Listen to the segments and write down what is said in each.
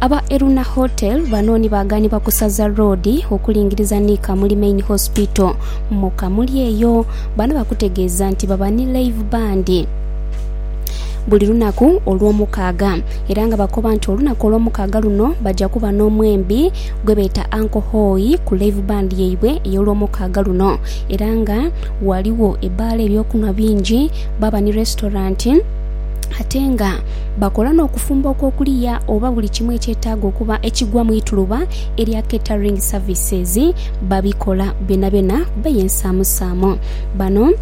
Aba Eruna Hotel bano ni baaganibwa ku Saza Road okulingiriza ni Kamuli Main Hospital mu Kamuli eyo. Bano bakutegeeza nti baba ni live band buli lunaku olw'omukaaga era nga bakoba nti olunaku olw'omukaaga luno baja kuba n'omwembi gwebeeta Uncle Hoi ku live band yaibwe ey'olw'omukaaga luno era nga ghaligho ebbaala eby'okunhwa bingi baaba ni restaurant ate nga Bakola n'okufumba okw'okuliya oba buli kimu ekyetaaga okuba ekigwa mu ituluba erya catering services babikola byonabyona beye nsaamusaamu. Bano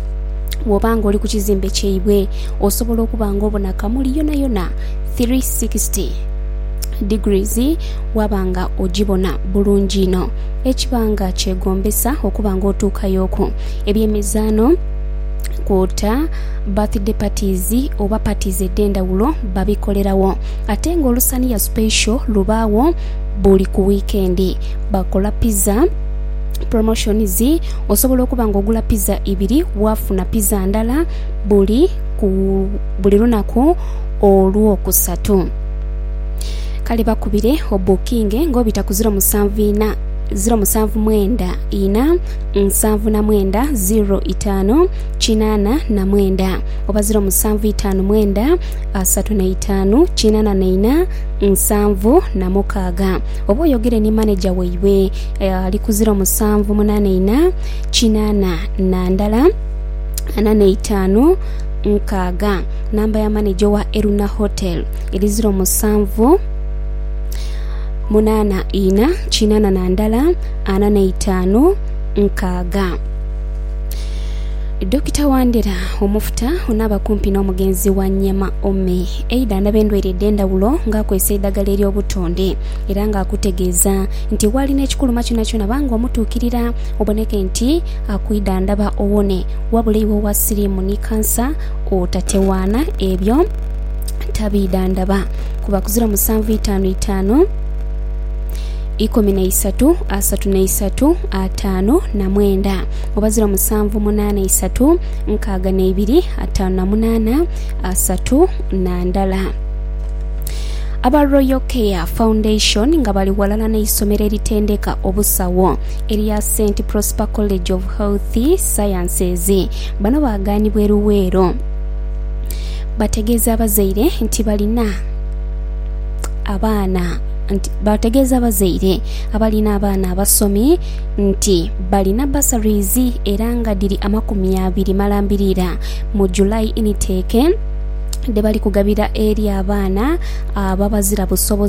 bw'oba nga oli ku kizimbe kyaibwe osobola okuba nga obona kamuli yonayona 360 degrees waaba nga ogibona bulungi inho ekiba nga kyegombesa okuba nga otuukayo ku eby'emizaano kwota Birthday parties oba parties edhendhawulo babikolerawo ate nga olusaniya special lubaawo buli ku weekend. Bakola pizza promotions osobola okuba nga ogula pizza ibiri wafuna pizza ndala buli ku buli lunaku olwokusatu kale bakubire obukinge nga obita ku ziro musanvu ina ziro musanvu mwenda ina nsanvu na mwenda ziro itaanu. kinaana na mwenda oba ziro musanvu itaanu mwenda asatu na itaanu kinaana na ina nsanvu na mukaaga oba oyogere ni maneja waibwe eh, ali ku ziro musanvu munaana ina kinaana na ndala ana na itaanu nkaaga namba ya maneja owa eruna hotel eri ziro musanvu munaana ina kinaana na ndala ana na itaanu nkaaga Dokita Wandera omufuta onaaba kumpi n'omugenzi wa Nyema Ome eidhandhaba endwaire edh'endhawulo ng'akozesa eidhagala ery'obutonde era ng'akutegeeza nti waalina ekikuluma kyonakyona ba ng'omutuukirira oboneke nti akwidhandhaba owone wabula iwe owa siriimu ni kansa otatewaana ebyo tabiidhandhaba kuba kuzira musanvu itaanu itaanu. ikumi na isatu, asatu na isatu, ataanu na mwenda, oba ziro musanvu munaana isatu, nkaaga na ibiri, ataanu na munaana, asatu na ndala. Aba Royal Care Foundation nga bali ghalala n'eisomero eritendeka obusawo erya St Prosper College of Health Sciences bano baaganibwa e Luweero bategeeza abazaire nti balina abaana nti baategeeza abazaire abalina abaana abasomi nti balina bursaries era nga dhiri amakumi abiri malambirira mu July Initeke dhebali kugabira eri abaana ababazira busobozi.